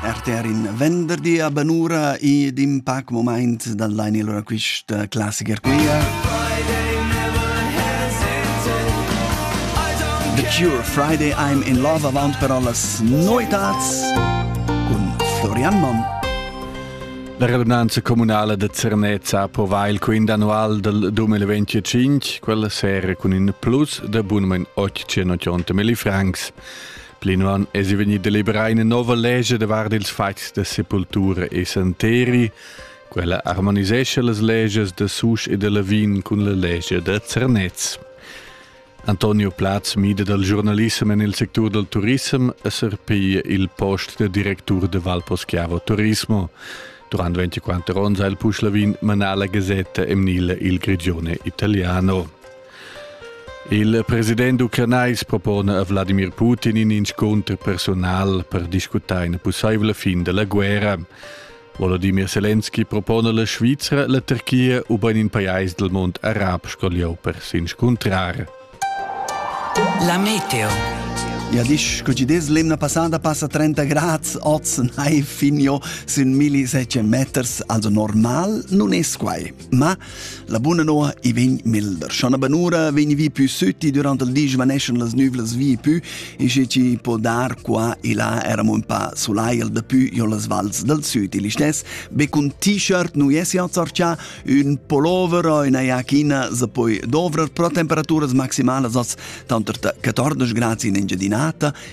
Erter in venderdi a Banura ed in pac moment dan lein il quista classicher quia. The Cure Friday I'm in Love avant però las noetats cun Florian Monn. La relevanza comunale de Zernezza provà il quint annual del 2025, quella sera con in plus de bunmen 880 francs. Plinwan es vegni deliberà ina nova lege davart ils fatgs da sepultura e santeri. Quella armonisescha las leges da Susch e da Lavin cun la lege da Zernez. Antonio Platz mida dal giornalissem en il sectur dal turism e surpiglia il post da directur de Valposchiavo Turismo. Durant 24 onns ha il Puschlavin manà la gazzetta emnila Il Grigione Italiano. Il president ucranais propona a Vladimir Putin in inscunter personal per discutar ina pussaivla fin da la guerra. Volodymyr Zelensky propona la Svizra, la Turchia ubain in pajais dal mund arab sco lieu per s'inscuntrar. La meteo. Ja, disch, scu ci des l'emna passata passa 30 grads, oz nai finio sün 1700 meters, also normal nun es quai. Ma la buna noa i vegn milder. Schon a Banura vegni vi più sütti durant il di svaneschan las nüvlas vi più e sche ci può dar qua e là eram un pa sulaiel da più jo las vals del süd. Il istes, be cun t-shirt nu esi azzarcià un pullover o una iachina se poi dovrer pro temperaturas maximalas as tanter 14 grads in Engiadinata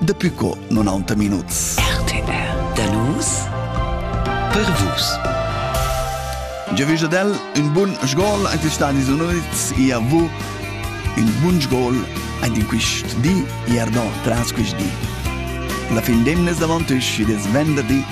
Dapi co 90 minuts. RTR da nus per vus. Giavisch ad el un bun sgol ein Stanis Unids ia vu un bun sgol ein in quist di ier do tras quist di. La fin d'emnes davant isch id es venderdi